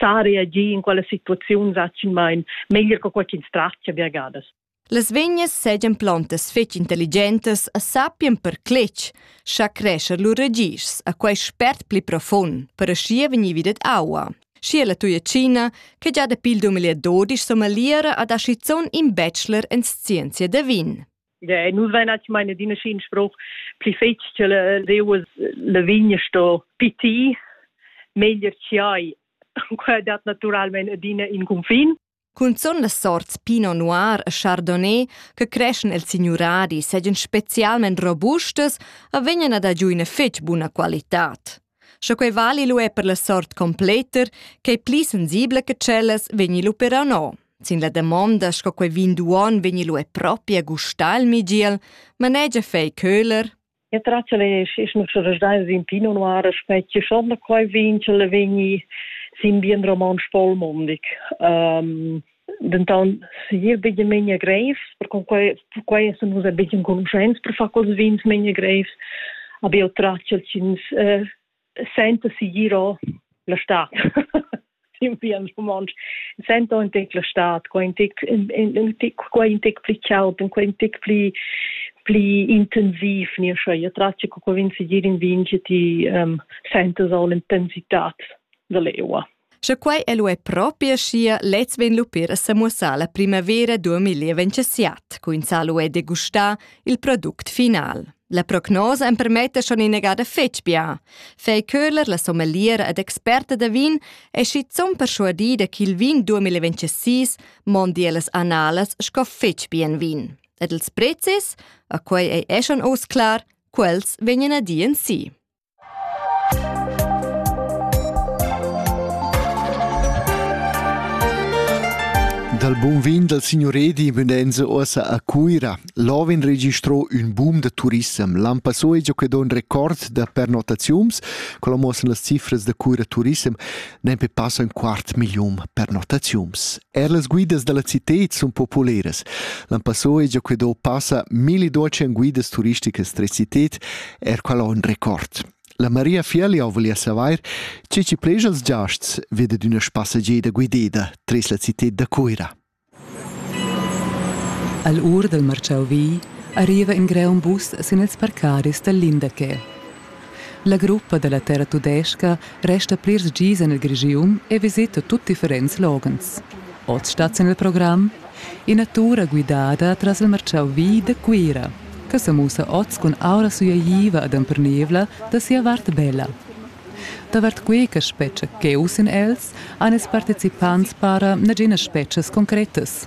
sa reagir in quella situaziun zaccimain meglier che quai ch'ins tratgia viagadas. Las vegnas segan plantas fetg intelligentas e sappien per cletg, scha crescer lur ragischs a quei spert pli profund, per aschia vegnivi dad aua. Schi la tuia Cina, che già dapi il 2012 somaliera ad aschizzon in bachelor en scienzia da vin. Ja, nus vein actualmein adina schin spruch pli fetg che leuas la vigna sto piti meglier chiai quei dat naturalmein adina in confin Cunzun las sorts Pinot Noir e Chardonnay che creschen el signuradi seigien specialment robustas, a vegnan ad ha giu ina fetg buna qualitad. Sche quei vali lu è per la sort completer, ch'ei pli sensibla che tschellas, vegni lu però no. Sin la damonda sco quei vin d'uon vegni lu è propi a gustar il migiel, manegia fei Köhler. Ja tracele ist noch schon stein in Pinot Noir specie schon quei vin che le vegni sin bien roman spolmondig. Um, denton segir bia memia grevs, perquei perquei sun nus buc enconuschents per far quels vins memia grevs. Aber io traccio ins eh, senta sigiro la stat. in bien romontsch sento in tec la stat qua in tec in tec qua in tec pli caut in qua in tec pli pli intensiv ne scha ja traccio co vin sigir in vin che ti um, sentas all intensitat da leua Sche quai è lu è propi aschia, lez vegn lu pir a semuossar la primavera 2027, coinzà lu è degustar il product final. La prognosa empermetta schon inegada fetg bia. Fei Köhler, la sommeliera ed experta da vin, è schizunt perschuadida ch'il vin 2026 mondi las annalas sco fetg bien vin. Ed ils prezis, a quei ei è schon oz clar, quels vegnan a dir en si. Dal bun vin dal signur Edi Münense uossa a Cuira. Là vegn registrò ün boom da turissem. L'an passò è già que don record da pernotaziums, quella muossan las cifras da Cuira Turissem, nempe passo in quart million pernotaziums. Eir las guidas da la cità sun populeras. L'an passò es gia que do passa milli docen guidas turisticas tres cited, eir quel ho ün record. La Maria Fieli ho voglia savair che chi pleja als giasts ved ad üna spassageda guideda tres la cità da Cuira. All ur dal marciau vi arriva in greun bus sin ils parcadis dal Lindaquet. La gruppa da la terra tudestga resta plirs gis en il Grischun e visita tut differents loghens. Oz stat sin il program ina tura guidada tras il martgau vi da Cuira che sa mussa oz cun aura sueiva ed empernivla da sia vart bella. Davart quei che spetga cheu sin els han ils participants para naginas spetgas concretas,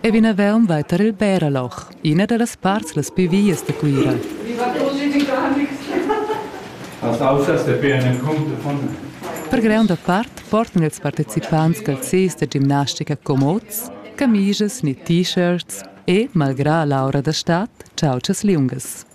e vinavon vai tar il Bärerloch, ina dallas parts las pli vias da Cuira. Las auzas depien encunter von Per gronda part portan ils participants calzis da gimnastica comods, camisas ni t-shirts e, malgrà l'aura da stad, chautschas liungas.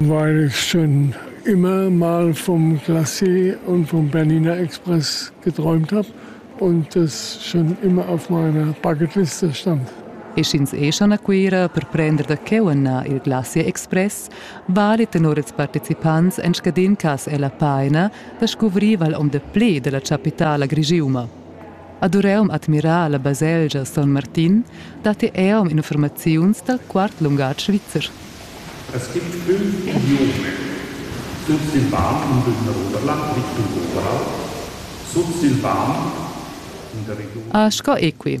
Weil ich schon immer mal vom Glacé und vom Berliner Express geträumt habe und das schon immer auf meiner Bucketliste stand. E sch'ins è schon a Cuira per prender da cheu ennà il Glacier Express, vali tenor ils participants en scadin cas ella paina da scuvrir val om de ple della chapitala grigiuma. Ad Ureum admirà la baselgia Son Martin dat eau infurmaziuns dal quart lungatg svizzer. Es gibt fünf Idiome. Sursilvan in dunna Oberland, Victor Oberald, sursilvan in der Region. Ah, sco equi.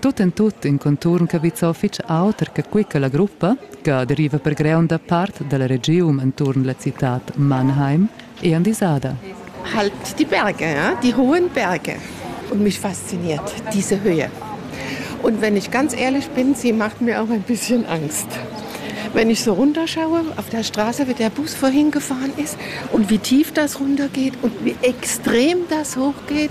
Tut en tut in conturn cavizza fitg auter che quei che la gruppa, che deriva per greunda part dalla regiun entuorn la citad Mannheim, è andisada. Halt die Berge, ja? die hohen Berge. Und mich fasziniert diese Höhe. Und wenn ich ganz ehrlich bin, sie macht mir auch ein bisschen Angst. Wenn ich so runterschaue, auf der Straße, wie der Bus vorhin gefahren ist und wie tief das runtergeht und wie extrem das hochgeht,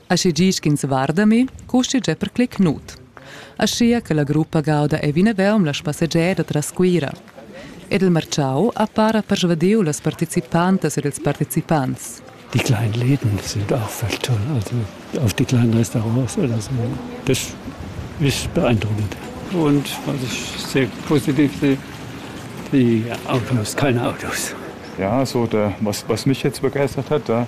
Aschi gi sch'ins varda mi, custi già per clic nut. Aschia che la gruppa gauda ei vinavon la spassegiada tras Cuira. Ed il marciau ha para persvadiu las participantas ed ils participants. Die kleinen Läden sind auch fast toll. Also auch die kleinen Restaurants oder so. Das ist beeindruckend. Und was ich sehr positiv sehe, die Autos, keine Autos. Ja, so der, was, was mich jetzt begeistert hat, da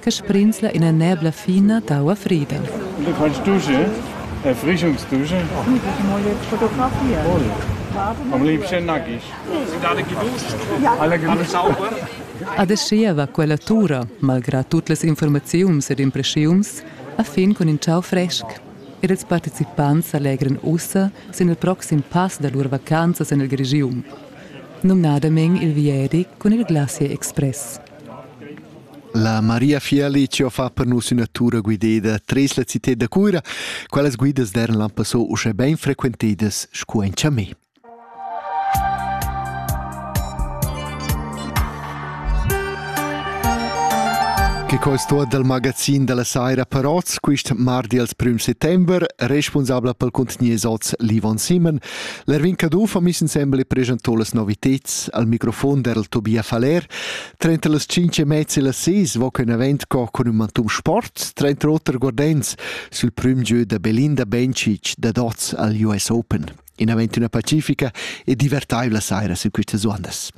che sbrinzla ina nebla fina d'aua frida. Du fais dusche? Äh, Frischungsdusche? Fotografia. Voll. Am liebsten nackig. Alla Gewürze. Adeschia va quella tura, malgrad tut las informaziuns ed impressiuns, a fin cun in ciao fresc. Ed ils participants allegran ussa sin il proxim pass da lur vacanzas en il Grigium, numnadamein il Vieri cun il Glacier Express. La Maria Fieli ci ho fa per nus üna tura guideda tres la cità da Cuira. Quelles guidas d'eran l'han passò uschè ben frequentedas sco in Chamé. Che co è stato dal magazin della Saira Paroz quist mardi als prüm settember, responsabla pel contenier soz Livon Simon, L'Erwin Caduff ha miss insembel e presentò las novitads al microfon derel Tobia Faller. Trenta las cinc e mezza e las seis va in event co cun un mantum sport, trenta oter guardens sul prim gieu da Belinda Bencic da dots al US Open. In event una pacifica e divertaivla saira su quistas uandas.